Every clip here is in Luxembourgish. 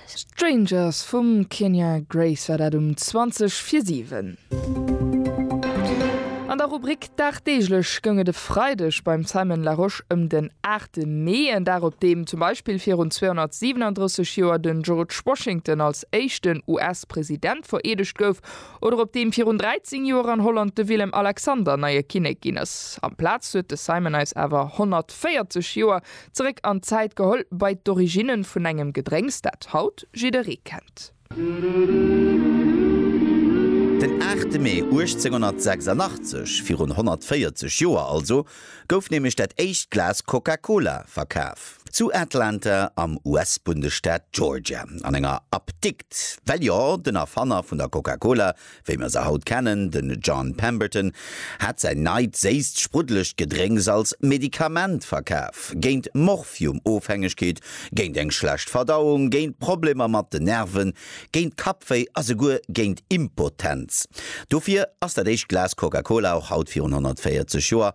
Strangers vum Kenya Grace war dat um 20 vir 7. An der Rubrik Dagdeeglech goung et e Freideg beim Simon Larosche ëm den 8 Mee, en Dag op deem zum Beispill virun 237 Joer de George Washington als éischten US-President vereedegt gouf oder op deem virun 13 Joer an Holland de Willem Alexander neie Kinnek ginn ass. Amplaz huet de Simon eis awer 140 Joer Zeréck an d'Zäit geholl, bei d'Originnen vun engem Gedrénks, dat haut jidderee kennt. Den 8 Mee 1886, virun 140 Joer also, gouf nämlech dat éischt Glas Coca-Cola verkaf. Zu Atlanta am US-Bundesstaat Georgia, an enger Apdikt. Well jo, den Erfanner vun der Coca-Cola, wéi mer se haut kennen, den John Pemberton hat säin neit séisst spruddelegt Gedrénks als Medikament verkaf, géint Morphium-Ofhängegkeet, géint eng schlecht Verdauung, géint Problemer mat den Nerven, géint Kappwéi a souguer géint Impotenz. Dofir ass dat éischt Glas Coca-Cola och haut virun 140 Joer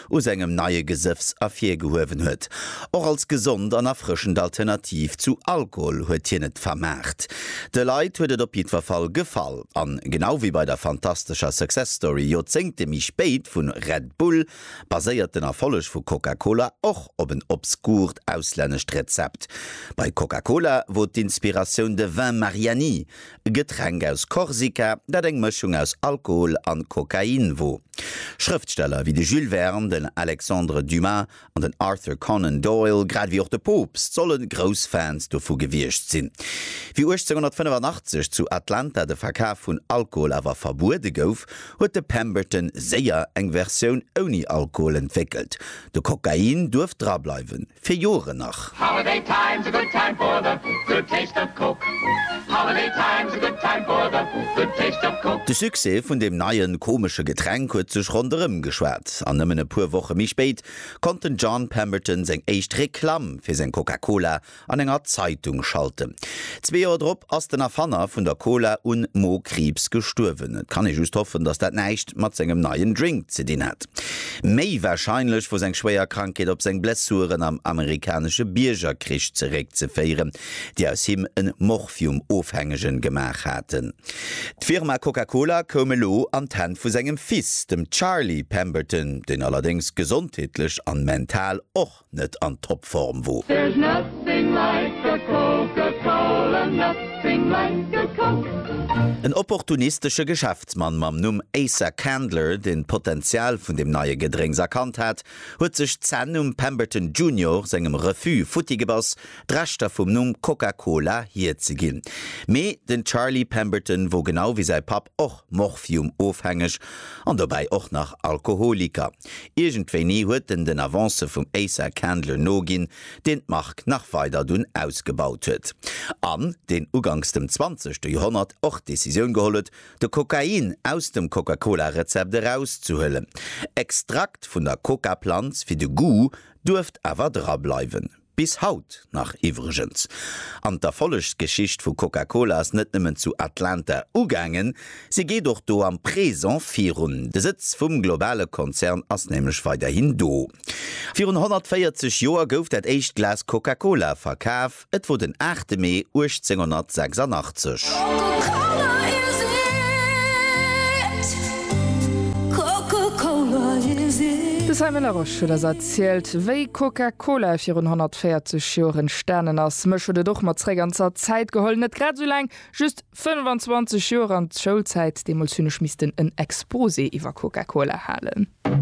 u sengem neie Gesëffs ervirgehuewen huet. Och als gesond an erfrëschend Alternativ zu Alkohol huet hien et vermaart. De Leit huet et op jiddwer Fall gefall. An genau wéi bei der fantastescher Success Story Joerzéngte méi spéit vu Red Bull, baséiert den Erfolleg vu Coca-Cola och op en obskurt auslännescht Rezept. Bei Coca-Cola wor d'Inspiratioun de Vin Mariani, e Getränk aus Korsika, dat eng Mëschung aus Alkohol an Kokain wor. Schrëftsteller wéi de Jules Verne, den Alexandre Dumas an den Arthur Conan Doyle, grad ewéi och de Poopst, solle grouss Fans dovu gewiescht sinn. Wéi 1885 zu Atlanta de Verkaf vun Alkohol awer verbuede gouf, huet de Pemberton séier eng Versioun ouni Alkohol entwéckelt, de Kokain duerft drableiwen. fir Joeren nach. Holiday time's a good time for the good taste of Coke Holiday time's a good time for the good taste of Coke. De Succès vun deem neien, komesche Getränk huet sech ronderëm geschwat, an nëmmen e puer Woche méi spéit konnt den John Pemberton seng éischt Reklamm fir seng Coca-Cola an enger Zeitung schalten. Zwee Joer drop ass den Erfanner vun der Cola un Mo-Kriibs gestuerwen. Et kann ee just hoffen, datt dat näischt mat sengem neien Drink ze dinn hat. Méi warscheinlech wor seng schwéier Krankheet op seng Blessuren am amerikanesche Biergerkrich zeréckzeféieren, déi aus him en Morphium-Ofhängegen gemaach haten. D'Firma Coca-Cola koum elo an d'Hänn vu sengem Fils, dem Charlie Pemberton, deen allerdéngs gesondheetlech an mental och net an Topform wo. There's nothing like a Coca-Cola, nothing like a Coke. En opportunistesche Geschäftsmann mam Numm Asa Candler, deen d'Potenzial vun dem neie Gedrénks erkannt hat, huet sech d'Zänn um Pemberton Junior sengem Refus futti gebass, d'Rechter vum Numm Coca-Cola hierzeginn. Mee den Charlie Pemberton wor genau wéi säi Papp och Morphium-ofhängeg an dobäi och nach Alkoholiker. Iergendwéini huet en den Avancë vum Asa Candler noginn, deen d'Mark nach weider dunn ausgebaut huet, an deen uganks dem zwanzegste Joerhonnert och d'Decisioun geholl huet, de Kokain aus dem Coca-Cola-Rezept erauszehuelen. Extrakt vun der Coca-Planz fir de Goût duerft awer drableiwen. Bis haut nach iwwregens. An d'Erfollegsgeschicht vu Coca-Cola ass net nëmmen zu Atlanta ugaangen, si geet och do am Présent virun. De Sëtz vum globale Konzern ass nämlech weiderhin do. Virun 140 Joer gouf dat éischt Glas Coca-Cola verkaf, et wor den 8 Mee 1886. Zielt, wéi Coca-Cola virun 140 Joer entstanen ass. Mech huet et och mat zréck an Zat Zäit geholl, net grad esou laang, just 25 Joer an d'Schoulzäit. Deemools hunn ech missten en Exposé iwwer Coca-Cola halen.